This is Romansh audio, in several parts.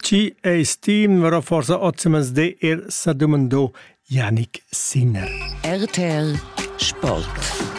Chi eis ti numero forsa ozimens de ir sa dumando Janik Sinner. RTL Sport.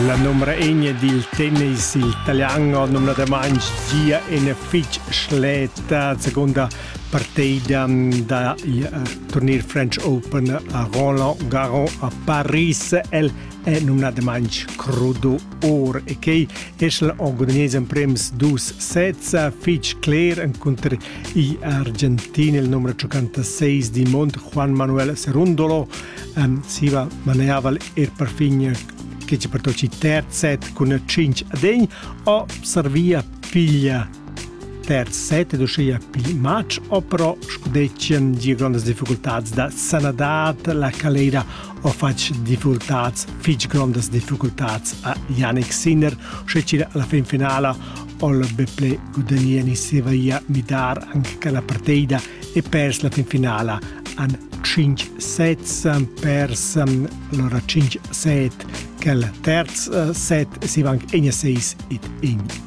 La numra egna dil tennis, il italian, ha numnadamain gia ina fitg schleta seconda partida da il turnier French Open a Roland Garros a Paris. El è numnadamain crudo or e quei es la Orgognese emprems dus sezza fitg cler encunter i Argentina il numero 56 di Mont Juan Manuel Serundolo ähm, siva maneaval er perfin che ci pertoci terzet cun 5 a degn o servia figlia Terz set ed uschia pli matg opero scudetschien gia grondas difficultads da sanadad. La Calera ha fatg difficultads, fitg grondas difficultads a Yannick Sinner, uschia alla fin finala All Beple Gudagneni se via midar anche che la partida e pers la fin finala an 5 sets pers allora 5 set che il terz set si van in 6 et in